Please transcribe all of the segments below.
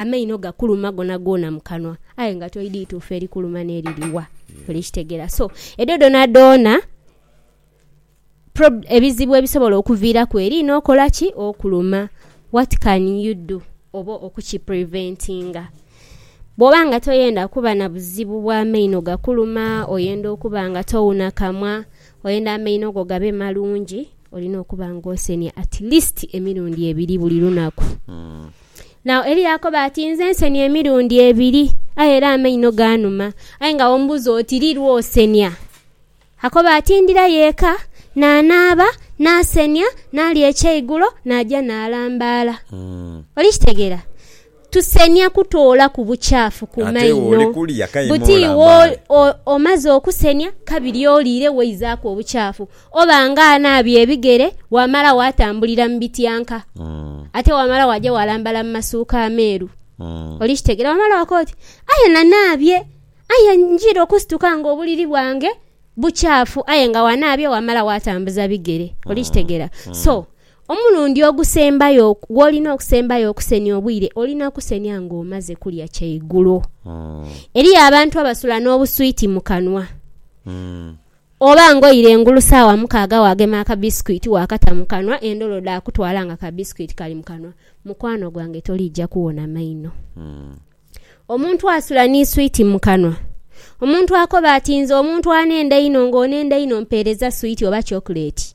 Amaino gakuluma gonagoona mu kanwa aye nga toidhi ituufu erikuluma n'eriri wa. Oli kitegera? So, edho dhonadoona prob, ebizibu ebisobola okuviiraku eriino okola ki? Okuluma. What can you do? Oba okukipreventinga. Bwoba nga toyenda kuba na buzibu bwa maino gakuluma, oyenda okuba nga towuna kamwa, oyenda amaino go gabe malungi, olina okuba nga osenia at least emirundi ebiri buli lunaku. Now Eli yaakoba ati, Nze nsenia emirundi ebiri, aye era amaino gaanuma. Aye nga ombuuza oti, Li lw'osenia? Akoba ati, Ndira y'eka, naanaaba, naasenia, naalya ekyeigulo, naaja naalambaala. Oli kitegeera? Tusenia kutoolaku bucaafu ku Ate iwe maino. oli kulya, kaima Buti iwe olambaale. o, o, omaze okusenia, kabiri oliire waizaaku obucaafu. Oba nga anaabye ebigere, waamala waatambulira mu bityanka, ate waamala waaja waalambala mu masuuka ameeru, olikitegeera. Waamala wakoba oti, Aye nanaabye, aye njira okusituka nga obuliri bwange bukyafu. Aye nga wanaabye waamala waatambuza bigere. Olikitegeera? So, omulundi ogusembayo gw'olina okusembayo okusenia obwire, olina kusenia ng'omaze kulya kyaigulo. Eriyo abantu abasula n'obuswiti mu kanwa. Oba ng'oire engulu saawa mukaaga waagema akabisikwiti waakata mu kanwa, endhodo dhaakutwala nga ka bisikwiti kali mu kanwa, mukwano gwange toliija kuwona maino. Omuntu asula ni swiiti mu kanwa. Omuntu akoba ati, Nze omuntu anenda einho, ng'onenda einho mpeereza swiiti oba chocolate.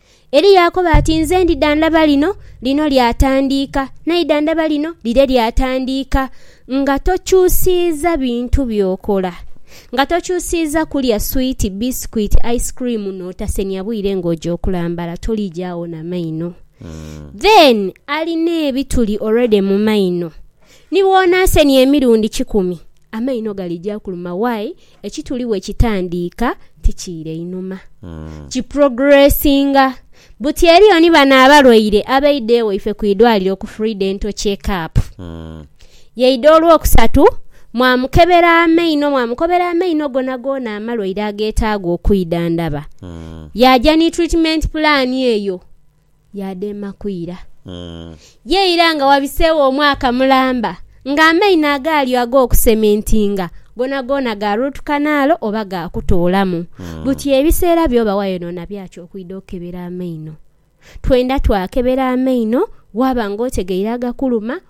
Eli yaakoba ati, Nze ndidha ndhaba lino, lino lyatandiika, naidha ndhaba lino, lire lyatandiika. Nga tokyusiiza bintu by'okola. Nga tokyusiiza kulya swiiti, bisikwiti, ice cream n'otasemya bwire ng'oja okulambala, toliija agho na maino. Then alina ebituli already mu maino, ni bw'onaasenhya emirundi kikumi, amaino galija kuluma why ekituli wekitandiika tikiira einhuma kiprogressinga buti eriyo ni bano abalwaire abaidha ewaife ku idwaliro ku free dental check up yaidha olwokusatu mwamukebera amaino mwamukobera amaino gonagoona amalwaire agetaaga okwidhandhaba yaaja ni treatment plan eyo Yaadheema kwira. Ye ira nga wabiseegho omwaka mulamba nga amaino agaaliyo ag'okusementinga goonagoona gaaruutukanaalo oba gaakutoolamu, buti ebiseera by'oba wayonoona bya ki okwidha okukebera amaino? Twendha twakebera amaino waaba ng'otegeire agakuluma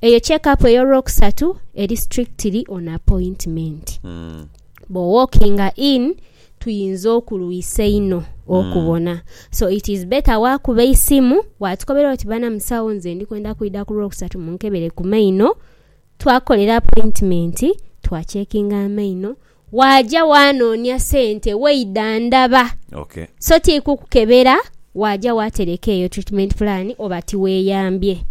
Eyo checkup ey'olwokusatu eri strictly on appointment. Bwo walkinga in tuyinza okulwisa einho okubona. So it is better waakuba eisimu waatukobera oti bana musawo nze ndi kwenda kwidha ku lwokusatu munkebere ku maino. Twakukolera appointment, twa checkinga amaino, Waaja waanoonia sente waidha ndaba. Ok. So tiri kukukebera, waaja waatereka eyo treatment plan oba tiweeyambye.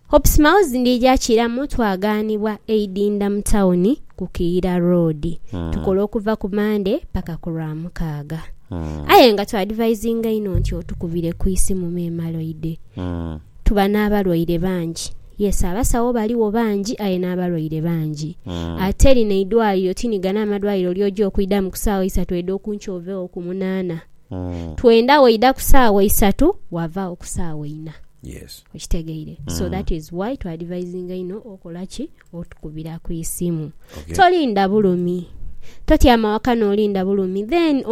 Hope Smiles ndiija kiramu twagaanibwa eidinda mu tawuni ku Kiira Road. Tukola okuva ku Mande paka ku Lwamukaaga. Aye nga twadivayizinga inho nti otukubire ku isimu memale oidhe. Tuba n'abalwaire bangi. Yes, abasawo baligho bangi aye n'abalwaire bangi. Ate lino eidwaliro ti ni gano amadwaliro ly'oja okwidhamu ku saawa isatu oidha okunkya oveegho ku munaana. Twenda waidha ku saawa isatu waavaagho ku saawa ina. Yes. Okitegeire? So that is why twa advisinga inho okola ki? Otukubira ku isimu. Okay. Tolinda bulumi. Totyama waka n'olinda bulumi. Then, omu.